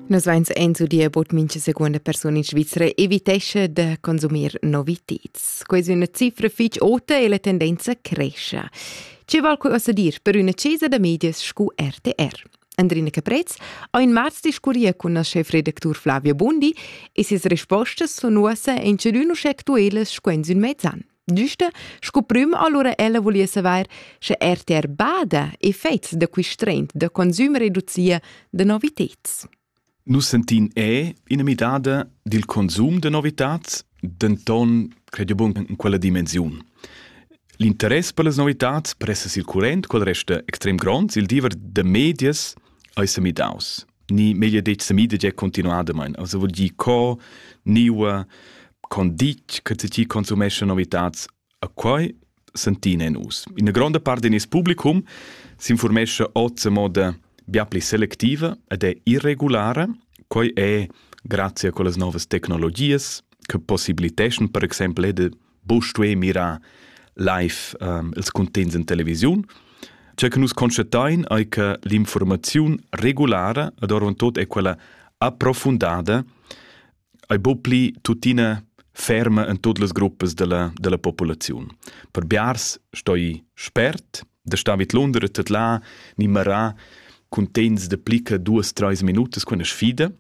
Nus veins eins udia bod mincha secunda persuna in Svizra evitescha da consumir noviteds. Questa è una cifra fitch ota e la tendenza cresce. Ce val quasi dir per una cesa da medias scu RTR? Andrina Caprez ha in marz discurria con la chefredactur Flavia Bundi e ses respostas sono ussa in ciadun uschè actuelas sco in mezzo anno. Nüste, sco prüm allura ella voliva savair, sche RTR bada e fets da quist trend da consum reducia da noviteds. Nus sentin è ina midada dil consum de novitats, denton credi bun in quella dimensiun. L'interess per las novitats pressa sil current, quel resta extrem gronds, il diever de medias ei se midaus. ni meglio detg semida già continuadamain also vuol dir co niua con ditg che ti consumesce novitats a quai sentina in us in gronda parte del publicum s'informesce oz a moda bia pli selectiva ed è irregulare quai è grazie a quelle nuove tecnologies che possibiliteschan per exempel de Bo stuei mirar live um, ils cuntents in televisiun. Ciò che nus constatein è che l'informazione regulare, ed orvant tot è quella approfundada, è bo pli tuttina ferma in tutte le gruppe della, della popolazione. Per Biars stoi spert, da stavit Londra tot là, ni marà cuntents de plica duas-treis minutas con sfida,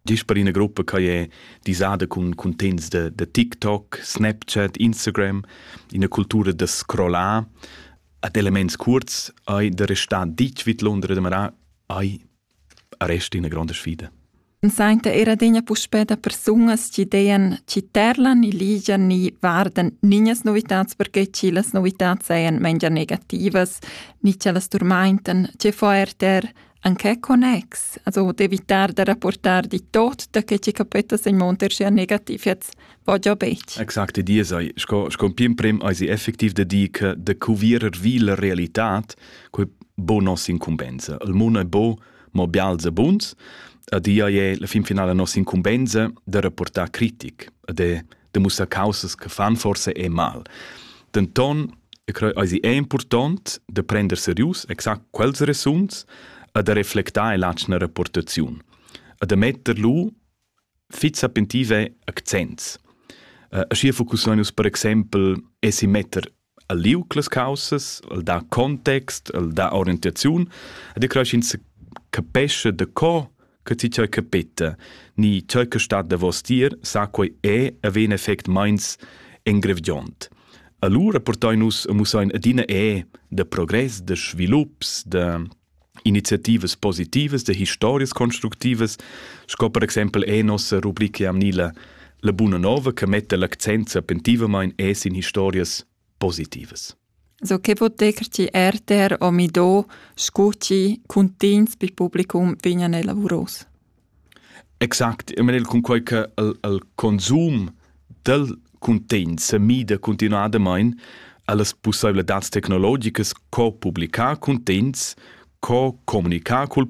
Gist per ina gruppa che è disada cun cuntegns da, da TikTok, Snapchat, Instagram, ina cultura da scrollar ad elements kurz hai da restar ditg vid Londra demarà hai rest ina gronda sfida. Sainta era degna puspè da persunas chi dean chi terlan e ligian ni vardan niñas novitats perché chi las novitats sajan mengia negativas, ni chi las turmaintan, che fo er ter anche connex, also d'evitar da rapportar di tot da che ci capetta sei monter sia negativiets, va già betg. Exakt dir sei, sco, sco pim prem eisi effektiv da dir che de cuvierer vi la realitat, quei bo nos incumbenza. Il mondo è bo, ma bialze buns, a dia è la fin finale nos incumbenza de rapportar critic, de de mussar causas che fan forse e mal. Denton, e creo eisi è important de prender serius exact quels resuns e de reflectar l'atschna rapportaziun. E de metter lu fit sapentive accents. Uh, schier focussonus per exempel esi metter el liug las caussas, el dà context, el dà orientaziun ed e cresch ins capescha da co che ti tgei capeta ni tgei che stat davos dir, sa quei è e vegn effect meins engrevgiont. Allura portai nus e mussein adina è de progress, de svilups, de iniziativas positivas de historias constructivas, sco per exempel è nossa rubrica amnila la buna nova che mette l'accent sapentivamain es in historias positivas. So che vot decr ti RTR o Mido scuti cuntins pi publicum vignan elavuros? Exact, eu menel cunquai che el el consum dal cuntegn sa mida cuntinuadamaing a las pussaivladads tecnologicas co publichar cuntegns, co comunichar cul